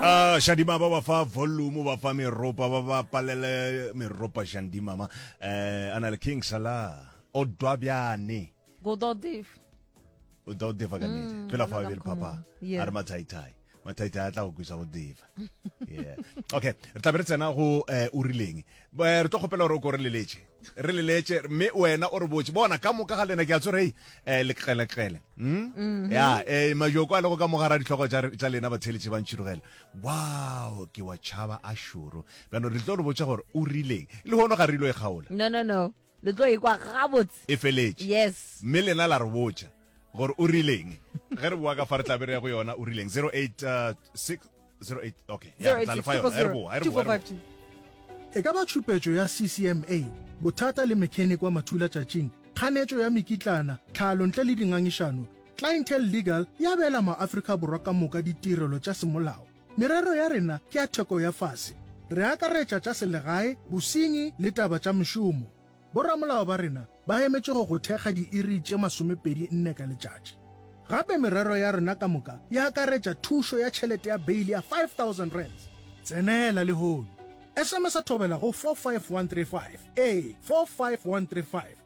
Ah, Shadima ba ba fa volume ba fa meropa ba ba palele meropa Shadima ma eh ana le King Salah o dwa byane go do div o do diva ka nete pela fa bel papa Yeah. a re mathai thai mathai thai a tla go kwisa go diva yeah okay re tla be re tsena go eh o rileng Ba- re tlo kgopela gore o ko re leletše re leletše mme wena o re botše bona ka moka ga lena ke a tsore hei um leqeleqele mm? ya um majoko a lego ka mogara ditlhogo tša re- tša lena batheeletše ba ntšhirogela wow ke wa tšhaba a šoro bjano re tlo re botša gore o rileng le hono ga re ilo e kgaola no no no Le tlo e kwa gabotse. E feletše. Yes. Mme lena la re botša gore o rileng. Ge re boa ka fa re tla be re ya go yona o rileng. 086 08 okay. Ya re tla le fa yona. Ge re boa, ge re boa, ge re boa. E ka ba tšhupetšo ya CCMA, bothata le mechanic wa mathulatšatšing, kganetšo ya mekitlana, tlhalo ntle le dingangišano, Clientele Legal e abela maAfrika Borwa ka moka ditirelo tša semolao. Merero ya rena ke ya theko ya fase. Re akaretša tša selegae, bosenyi le taba tša mešomo. Boramolao ba rena ba emetše go go thekga diiri tše masomepedi nne ka letšatši. Gape merero ya rena ka moka e akaretša thušo ya tšhelete ya beili ya R5000. Tsenela lehono! SMSa thobela go 45135, ee, 45135.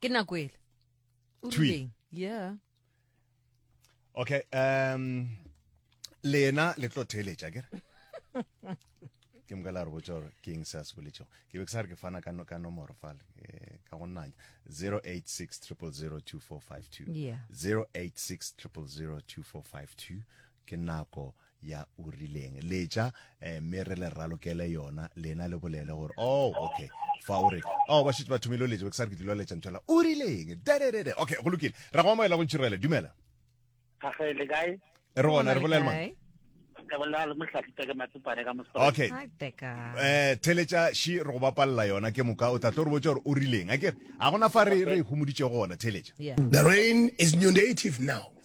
ke nako ele o rileng yeah okay um lena le tlo theeletša kere ke moka la re botsa gore ke eng se a se boletšego ke be ke sa re ke fana ka nomoro fale eh, ka go nnanya 086 086 0002452 ke nako ya o rileng letša eh, mme re le ralokele yona lena le bolele gore oh okay fa o re oh ba šetse ba thomile o letša ke sa re ke tlilo letša nthwela o rileng dededede okay go lokile ra go amoela go ntšhirele dumela gage le kae re gona re bolele mang okay eh theletša shi re go bapalela yona ke moka o tla tlo re botša gore o rileng a kere ga gona fa re re humoditšego gona theletša the rain is new native now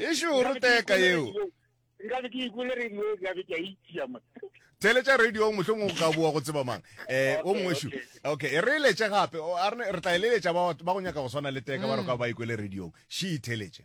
e šoro teka yeo nkabe ke ikole radio nkabe ke a itšia mo theletša radio mohlong o ka boa go tseba mang eh o mongwe shu okay e re letse gape re tla e leletša ba go nyaka go swana le teka ba re ka ba ikwele radio she theletše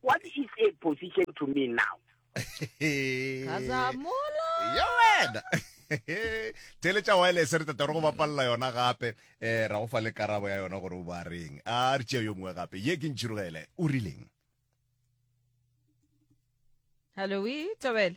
What is a position to me now? Gazamola. ya wena tele tša wireless re tata re go bapalela yona gape um ra go fa le karabo ya yona gore o ba reng a re tšea yo mongwe gape ye ke ntšhirogele o rileng Hello, we, Tobela.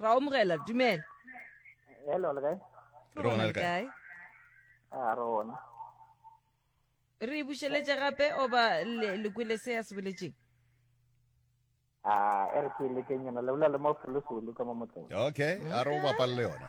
ra omogela dumela hello le kae rona le kae a rona re bušeletše gape oba le kwele se ya se boletseng a e re ke lekeng yona le bolela le mo foloso le ka mo motseng okay a re o bapale le yona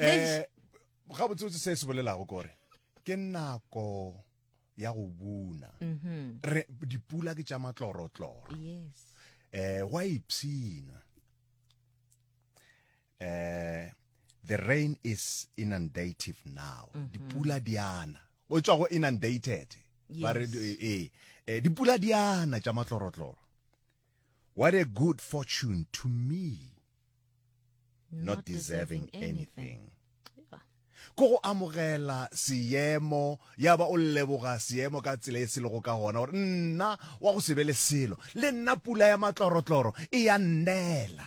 Eh, gabotsebotse se se bolelago kore ke nako ya go buna mhm. re dipula ke tša matlorotloro yes eh wa ipsina eh the rain is inundative now mhm. dipula diana o tswa go inundated ba re eh, eh, eh dipula diana tša matlorotloro What a good fortune to me not deserving anything. Ko go amogela seemo ya ba o leboga seemo ka tsela e se lego ka gona gore nna wa go se be le selo le nna pula ya matlorotloro e ya nnela.